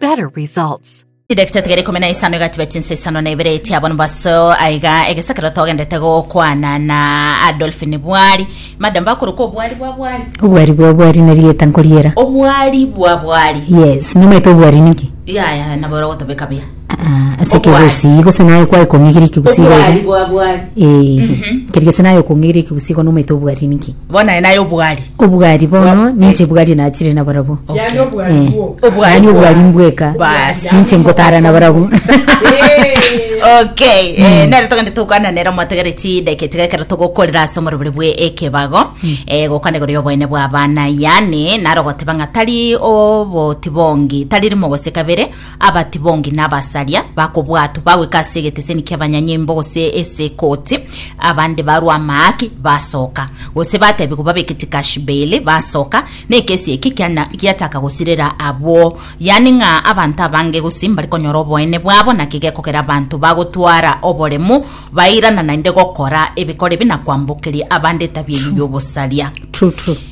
better results. Chidakika chitigare ikomi na isano egatiba chinsa isano na ibere echi abwo nibaso aiga egesakero togendete gokwana na adolfin bwari madam bakorokwa obwari bwa bwari obwari bwa obwari na rieta nkoriera obwari bwa bwari yes nomaete obwari ninki yaya nabora gotobeka buya Ah, ase Obwari. ekegusii gose naye kwaye kong'igiri ekegusii obwari gaiga bwa bwari Eh, keri gese naye okong'igiri ekegusii gono omaete obwari ninki Bono aye naye obwari. Obwari bono Bo- ninche bwari nachire na barabwo. Yaani obwari Eh. bwo. Obwari Yaani obwari bwao. mbweka. Basi. Ninche nkotara na barabwo. okay eh, nere togende tokwana nere mwategere chideke tigekero togokorera ase omorobere bwe ekebago eh, gokwana igoro y'oboene bw'abana yani narogoteba ng'a tari oboti bongi tari rimo gose kabere Abati bonge nabasaria bakobwatwa bagoika ase egeteseni ki'abanyanyimbo gose ase ekoti, abande barwa amaaki, basoka. Gose bateebigwa babeke chikashi beili, basoka. Nekesi eki kiana giachaka gosirera abwo, yaani ng'a abanto abange gose mbare konyora oboene bwabo, naki gekogera abanto bagotwara oboremu bairana naende gokora ebikoro ebi na kwambokeria abande etabia eyio y'obosaria. True, true.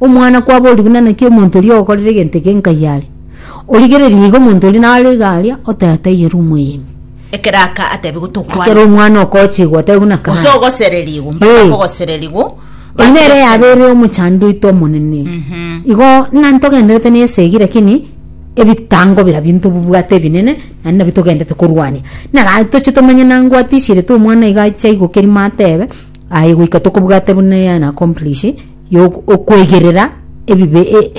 Omwana kwabo oria buna naki omonto oria ogokorera egento eke nkai are, origererie igo omonto oria naro iga aria, oteba taiyo ere omoyemi. Ekero aka atebigwe tokwana. Ekero omwana okochigwa otebigwe na Gose kare. ogosererigwa, mbare Eh. bakogosererigwa. Oyi nere bakechana. yabeire omochando oito omonene. Mhm. Igo nari togenderete na esegi lakini ebitango birabio ntobibwate ebinene naende nabio togenderete korwania. Naka toche tomenye nango atishirete omwana iga ache aigokeri matebe aye goika tokobwate buna eyane accomplish yokwegerera ebibe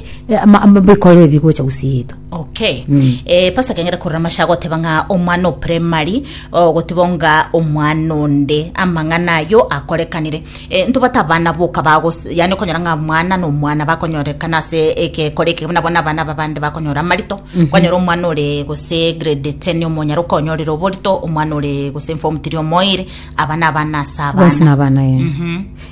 bikoro ebi gocha gosieta okay mm. e, eh, pasa kengera korora masha agoteba ng'a omwana o primary ogoteba nga omwana onde amang'ana ayo akorekanire e, eh, ntobata abana boka bagos yani okonyora ng'a mwana na omwana bakonyorekana ase egekore eke buna bona abana babande bakonyora amarito mm -hmm. kwanyora omwana ore gose grade ten omonyara okonyorire oborito omwana ore gose form tiri omoire abana abana ase abana abana, abana yeah. mm -hmm.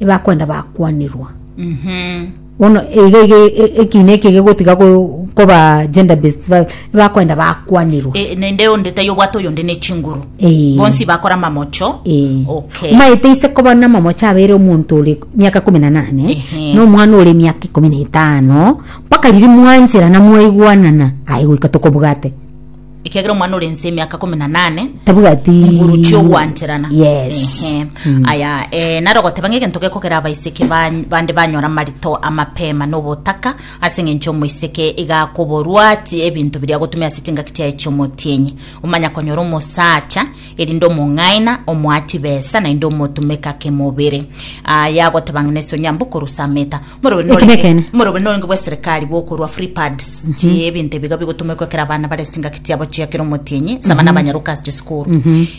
ebakwenda bakwanirwa bono iga iga e- e- ekina eke gegotiga ko- koba gender based violence ebakwenda bakwanirwa E, nende onde tai obwate oyonde ne chinguru Eh. bonsi bakora mamocho Eh. okay maete ise koba namamocha abere omonto ore miaka kumi na nane Ehe. na omwana ore miaka ikomi na etano mpaka riria mwancherana mwaigwanana aye goika tokobwate Ekiagera omwana ore ense emiaka komi na nane Tabwati. nguru chi'ogwancherana Yes. Ehe. aya eh, naro goteba ng'a egento gekokera abaiseke ba- bande banyora amarito amapema na obotaka ase eng'encho omoiseke iga akoborwa chi- ebinto biria agotumia ase chingaki chiaye chi'omotienyi omanya konyora omosacha erinde omong'aina omoa chibesa naende omotumeka kemobere aya goteba ng'a nese onyambe okorusa ameta Eki nekeene. Morobe noringe bw'eserekari bokorwa free pads chie ebinto ebiga bigotomekwa ekero abana bare chingaki chiabo chia kera omotienyi ase abana abanyaroka ase chisukuru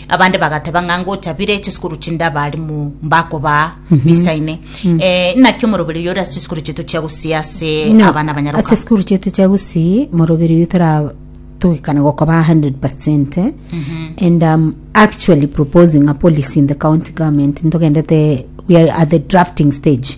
abande bagateba ng'a ngochabire chisukuru chinde abarimu mbakobaa bisaine Eh, inaki omoroberi oyo ore ase chisukuru chiaito chia gusii ase No, abana abanyaroka ase sikuru chiaito chia gusii moroberi oyo tara togekana gokoba 100 and um, actually proposing a policy in the county government ntogendete we are at the drafting stage